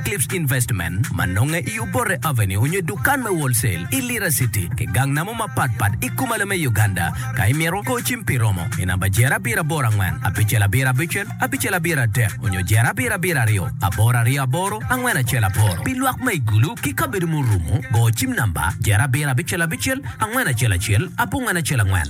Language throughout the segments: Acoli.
Cliffs Investment ma nonge i Obote Avenue onyo i dukan me Wholesale i Lira City ki gang namo mapat pat i kumalo me Uganda. Ka imito kor cim pi romo i namba jer abiro aboro angwen abicel abiro abicel abicel abiro adek onyo jer abiro abiro aryo aboro aryo aboro angwen acel aboro pi lwak ma i Gulu ki kabedo murumo go cim namba jer abiro abicel abicel angwen acel acel abongwen acel angwen.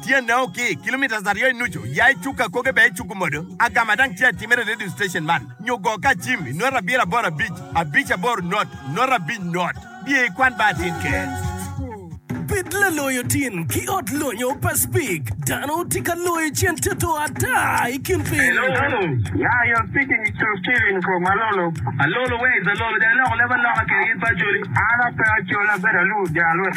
Tyene o ki kilometres aryo i nucu, ya i cuk akoge bene icuku modo. Agama dang tye atimere i radio station man, nyo go ka acim i nota abiro aboro abic, abic aboro not, nota abic not. Biye i kwan ba atin ker. Bed laloyo tin ki ot lonyo pa Spik. Dano tye ka loyo cen toto ata i kin piny. Alolo, ya i ot Spik inyic Col. Steven Nkrumah Alolo. Alolo, where is Alolo? Dong iloko leb aloka kede gin pa Acholi. An ape Acholi, abedo alur ja Alwet.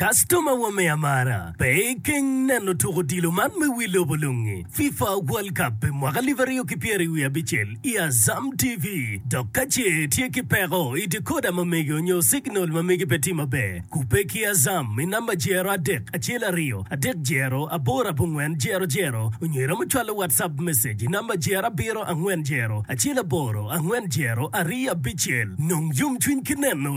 Kastoma wa me amara, pe ikeng neno tuk odilo man me wi lobo lungi, FIFA World Cup pi mwaka alib aryo ki pyeri wiye abicel i Azam TV. Dok ka ce itye ki peko i decoder ma mege onyo signal ma mege pe tye maber, kubbe ki Azam i namba jero adek acel aryo adek jero aboro abongwen jero jero onyo iromo cwalo WhatsApp message i namba jero abiro angwen jero acel aboro angwen jero aryo abicel. Nong yomcwiny ki neno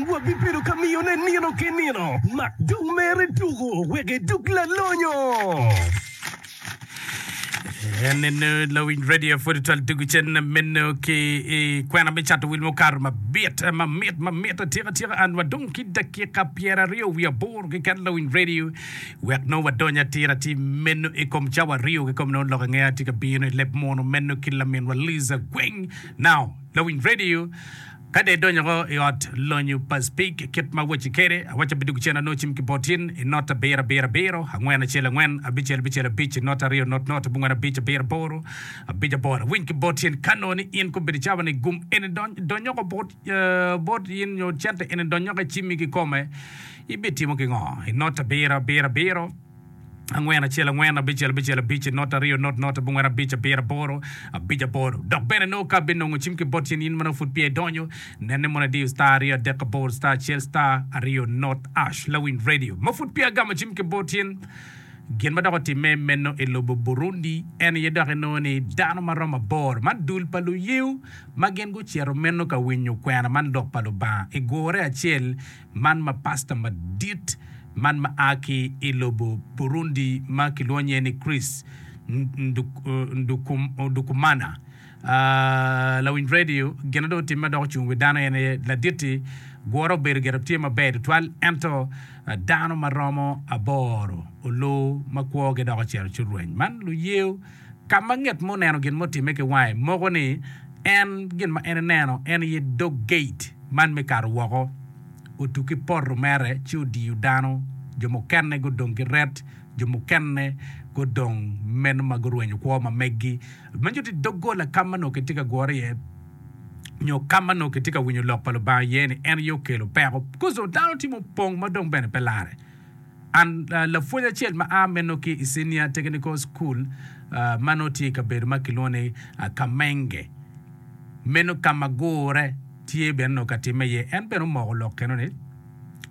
Wabibedo ka miyone nino ki nino. Mak dong mere tuku wek idug lalonyo. En eno lawiny radio pwod twal tugu cen meno ki i kwena me cato wil mukato mabit mamit mamit atika tika an wadong ki dakika pyeraryo wiye aboro keken lawiny radio wek nongo wadony atira ti meno i kom cawa aryo ki kom nongo lok ange ati ka bino i leb mono meno ki laminwa Liza Gweng now lawiny radio Ka dong idonyo woko i ot lonyo pa Speke kit ma awacci kwede, awacci abidwogo cen anongo cim ki bot in i nota abiro abiro abiro, angwen acel angwen, abicel bicel abic i nota aryo not not, abongwen abic abiro aboro, abic aboro. Awiny ki bot in ka nongo ni in kobedo cawa ni gum eni dony donyo woko bot in nyo cente eni donyo woko i cimmi kikome, ibitimo kingo i nota abiro abiro abiro? angwen acel angwen abicel abicel abic i not aryo not not abongwen abic abiro aboro abic aboro dok bene nongo ka binongo cim ki bot cen in manongo pud peya idonyo nene mono idiyo star aryo adek aboro star acel star aryo not ash lawiny radio ma pud peya agamo cim ki bot cen gin ma dok otimme meno i lobo Burundi en aye dok inongo ni dano ma romo aboro ma dul pa luyew ma gin gucito meno ka winyo kwena man lok pa Lubanga i gure acel Man ma pasta madit man ma a ki i lobo Burundi ma kilwongo nyinge ni Chris Ndikumana, lawiny redio, gin ma dong otimme dok ocung i wi dano en aye Ladit-ti, gure obedo gire tye maber tutwal ento dano ma romo aboro olor ma kwogi dok ocito ci orweny. Man luyeyo. Ka ma nget mo oneno gin ma otimme ki wange, moko ni en gin ma en eneno en aye dog geit man me kato woko. Otu ki poto mere ci odiyo dano, jo mukene gudong ki ret, jo mukene gudong meno ma gurwenyo kwo ma megi. Ma nyuto ni doggola ka ma nongo kitye ka gure iye nyo ka ma nongo kitye ka winyo lok pa Lubanga iye-ni en aye okelo peko. Gudo dano tye mupong ma dong bene pe larre. An lapwony acel ma a meno ki i Senior Technical School ma nongo tye i kabedo ma kilwongo ni Kamenge. Meno ka ma gurre tye bene nongo ka timme iye. En bene omoko lok keno ni,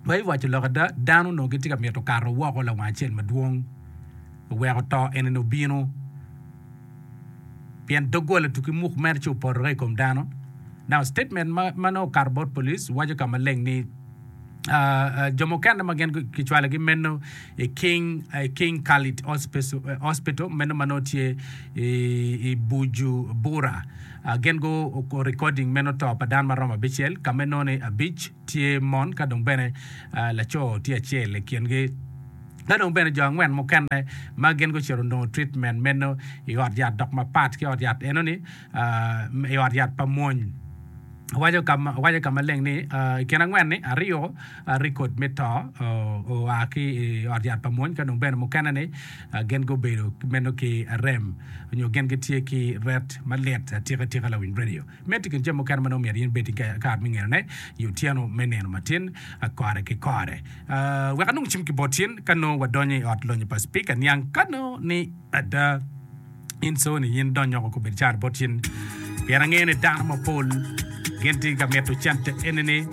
Pe iwaco lok ada, dano onongo gitye ka mito kato woko lawang acel madwong, oweko to enini obino, pien doggola tuki muk mere ci opotore i kom dano. Now, statement ma nongo okato bot police waco ka maleng ni, jo mukene ma gin kicwalogi meno i King Khalid Hospital meno ma nongo tye i Bujumbura. Gin gu recording meno to pa dano ma romo abicel ka ma nongo ni abic tye mon ka dong bene laco tye acel i kingi. Ka dong bene jo angwen mukene ma gin gucito onongo treatment meno i ot yat dok mapat ki ot yat enoni. i ot yat pa mwony. Owaco ka maleng ni, I kin angwen-ni, aryo rekod me to oa ki i ot yat pa mwony, ka dong bene mukene-ni gin gubedo meno ki rem nyo gin gitye ki ret malit atika tika. Lawiny redio meno tye i kin jami mukene ma nongo myero in bed ki kare me ngenone i otyeno me nino matin kore ki kore wek anong cim ki bot in ka nongo wadonyo i Ot Lonyo pa Cipika niang ka nongo ni ada In Sony, in dony oko kubed car bot cen, pien angeyo ni dano mapol gin tye ka mito cente enini.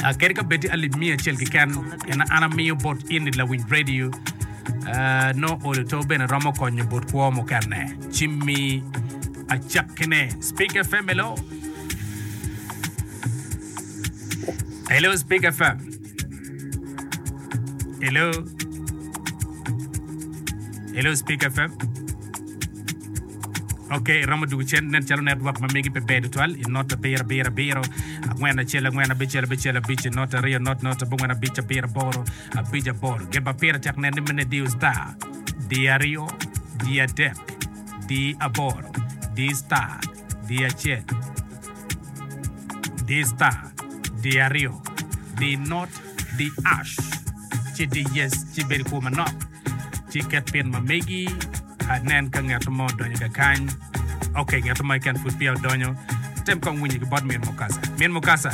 Ah, kadi ka bed tye alip miya acel keken, en an amiyo bot in i lawiny redio. Ah, nongo olo to bene romo konyo bot kwo mukene. Jimmy acakkine, Spik FM, hello. Hello Spik FM. Hello. Hello Speak FM. Ok, iromo dwogo cen nen calo network ma megi pe ber tutwal i not abiro abiro abiro angwen acel angwen abicel abicel abic i not aryo not not abongwen abic abiro aboro abic aboro gin pa pire tek nen ni mene diyo star diyo aryo diyo adek diyo aboro diyo star di acel, di star, di aryo, di not, di ash, ci di yes, ci bed i kwo manok, ci iket pin ma megi, anen ka ngeto mo odonyo ka kany, ok, ngeto mo keken pud peya odonyo, tem kong winyo ki bot min Mukasa, min Mukasa!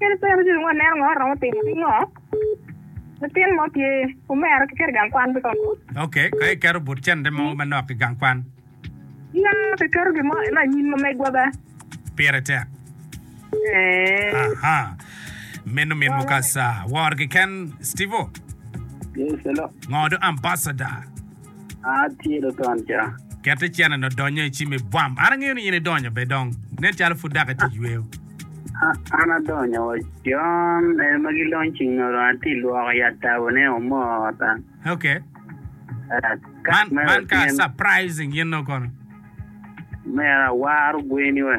Kadi bed ni waneno ngo romo timo ki ngo, latin mo tye omera ki keto i gang kwan kiko? Ok, ka iketo but cente mo manok i gang kwan. Ya, kiketo gin mo ena anyim ma megwa be. Pire tek. Eeh. Aha. Meno min mukasa. Wor kiken, Steve-o. Yes, hello. Ngo do ambassador? Atye luton ca. Ket icene no donyo i cimi bwam. An angeyo ni in idonyo be dong. Nen calo pud dok iti yweyo. An adonyo wa John en ma gi launching no dong ati lwoko i atabo ne omoo ota. Ok. Kat me Man ka surprising in nongo kono. Omera awar ogweni we.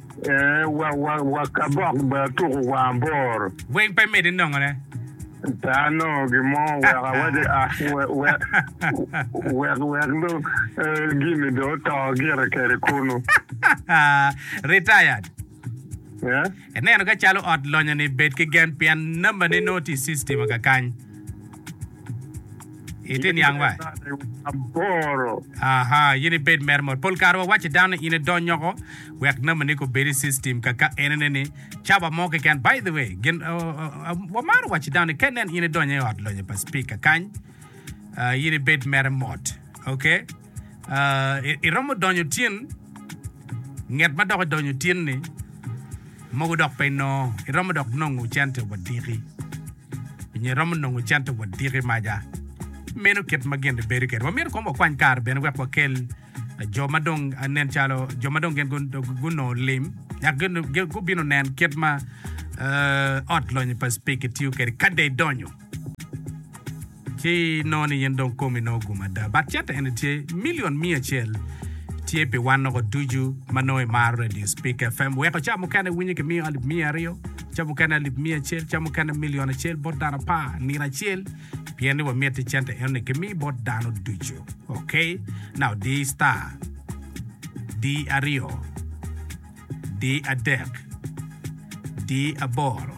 Wakabok bene atuko wa aboro. Weng pe miti nongone. Pe anongo gin mo wek awacci wek wek dong gini dong oto gire kede kunu. Retired. Ineno ka calo ot lonyo ni bed ki gen pien nambane nongo tye i system kakany. Itye niang wa? Aboro. Aha, in ibed mere mot. Pol kare wa waci dano ni in idony oko wek name ni ko bed i system ka ka enene ni caba mo keken. By the way, gin wa maro waci dano ni ka inen in idonyo i ot lonyo pa speaker kany, in ibed mere mot. Okay? iromo donyo tin nget ma dok idonyo tin ni mogo dok pe inongo iromo dok nongo cente wadiki nyo iromo nongo cente wadiki maja meno kit ma gin bedo kede wamyero kong wakwany kare bene wek wakel jo ma dong nen calo jo ma dong gin gunongo lim yak gubino nen kit ma ot lonyo pa spiki tiyo kede kade idonyo Ki noni in dong komi nongo ogum ada. But cente eni tye million miya acel tye pi wan loko ducu ma nongo imaro radio speak FM. Weko ca mukene iwinyo ki miyo alip miya aryo, ca mukene alip miya acel, ca mukene million acel bot dano apar nino acel pien ni wamiti cente enoni ki mi bot dano ducu. Ok. Na odi star. Di aryo. Di adek. Di aboro.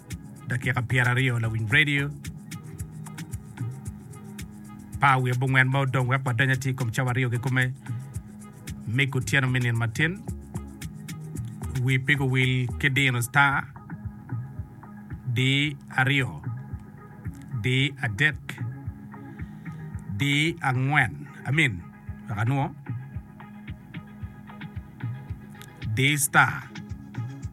dakika pyeraryo lawiny radio pa awiye bongwen ma odong wek wadony atir kom cawa aryo kikome mig otyeno me nino matin wi pigo wil ki dino star di aryo di adek di angwen amin wek anwo di star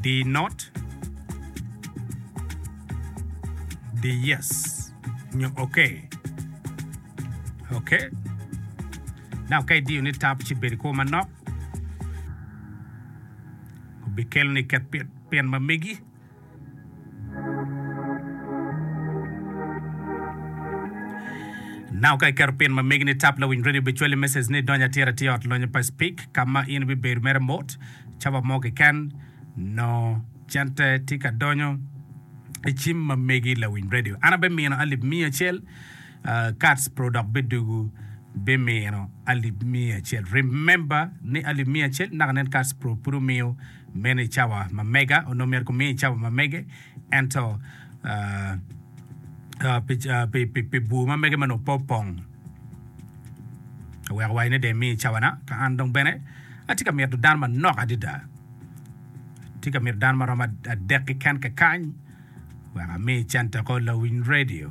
Di not, di yes nyo okay. Okay. Dok ka idiyo ni tab ci bedo i kwo manok, obikeloni ket pin ma megi. Nako ka iketo pin ma megi ni Tap Lawiny Radio bicwali message ni Dony Atir Atir Ot Lonyo pa Speak ka ma in ibibedo mere mot cava mo keken noo cente tye ka donyo i cim ma megi Lawiny Radio. An abimino alip miya acel uh, Kats Pro dok bidugu bimino alip miya acel. Remember ni alip miya acel naka nen Kats Pro pud omiyo Meno i cawa ma mega, onongo myero kumiye i cawa ma mege, ento pi bur ma mege ma onongo pe opong, aweko wai ni dong emiya i cawana, ka an dong bene atye ka mito dano manok adada, atye ka mito dano ma romo adek keken kakany wek ami i Canteko Lawiny Radio.